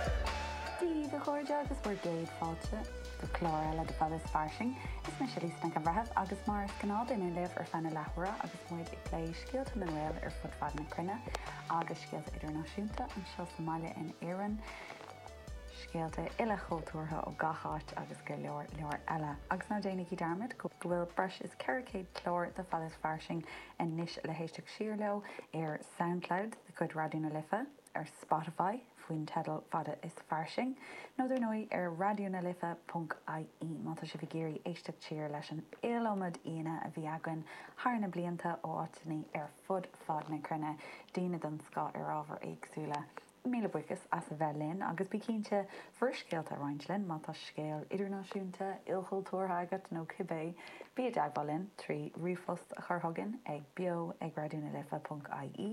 Daoibh, a chairde, agus bhur gcéad fáilte go clár eile de Fada is Fairsing. Is mise Lisa Nic an Bhreithimh agus mar is gnáth beidh mé libh ar feadh na leathuaire agus muid ag plé scéalta na nGael ar fud fad na cruinne agus scéalta idirnáisiúnta, anseo sa mbaile in Éirinn, scéalta ilchultúrtha ó gach áit agus go leor, leor eile. Agus ná déanaigí dearmad go bhfuil breis is 400 clár de Fada is Fairsing anois le héisteacht siar leo ar Soundcloud de chuid Raidió na Life. ar Spotify faoin teideal fada is fairsing, nó dar ndóigh ar Raidió na Life punc ie má tá sibh ag iarraidh éisteacht siar leis an iliomad aíonna a bhí againn thar na blianta ó áiteanna ar fud fad na cruinne, daoine den scoth ar ábhair éagsúla. Míle buíochas as a bheith linn agus bí cinnte bhur scéalta a roinnt linn má tá scéal idirnáisiúnta, ilchultúrtha agat nó cibé! Bí i dteagmháil linn trí ríomhphost a chur chugainn ag beo@raidió na life punc ie.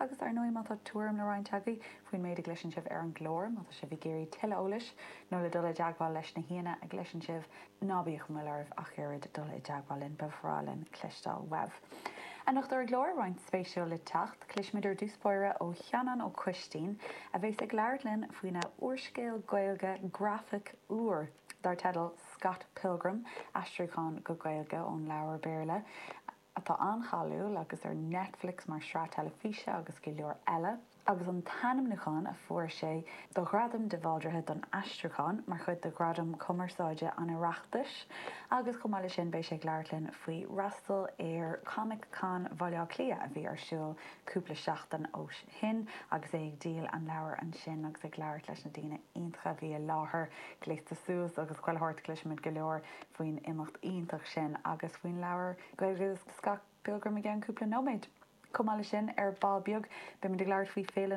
Agus, ar ndóigh, má tá tuairim le roinnt agaibh faoin méid a gcloiseann sibh ar an gclár, má tá sibh ag iarraidh tuilleadh eolais nó le dul i dteagmháil leis na haíonna a gcloiseann sibh, ná bíodh aon mhoill oraibh ach oiread dul i dteagmháil linn. Ba bhreá linn cloisteáil uaibh. Anocht ar an gclár, roinnt spéisiúil le teacht. Cloisfimid ar dtús báire ó Sheanán Ó Coistín, a bheas ag labhairt linn faoina úrscéal Gaeilge grafach úr dar teideal Scott Pilgrim, aistriúchán go Gaeilge ón leabhar Béarla. atá an-cháiliúil agus ar Netflix mar shraith teilifíse agus go leor eile, agus an t-ainmniúchán a fuair sé do Ghradam de Bhaldraithe don Aistriúchán mar chuid de Ghradaim Chumarsáide an Oireachtais, agus chomh maith leis sin beidh sé ag labhairt linn faoi fhreastal ar Comic Con Bhaile Átha Cliath a bhí ar siúl cúpla seachtain ó shin agus é ag díol an leabhair ansin agus ag labhairt leis na daoine iontacha a bhí i láthair. Gléasta suas agus chuile shórt, cloisfimid go leor. faoin imeacht iontach sin agus faoin leabhar Gaeilge de Scott Pilgrim i gceann cúpla nóiméad. Chomh maith leis sin, ar ball beag, beimid ag labhairt faoi Féile na.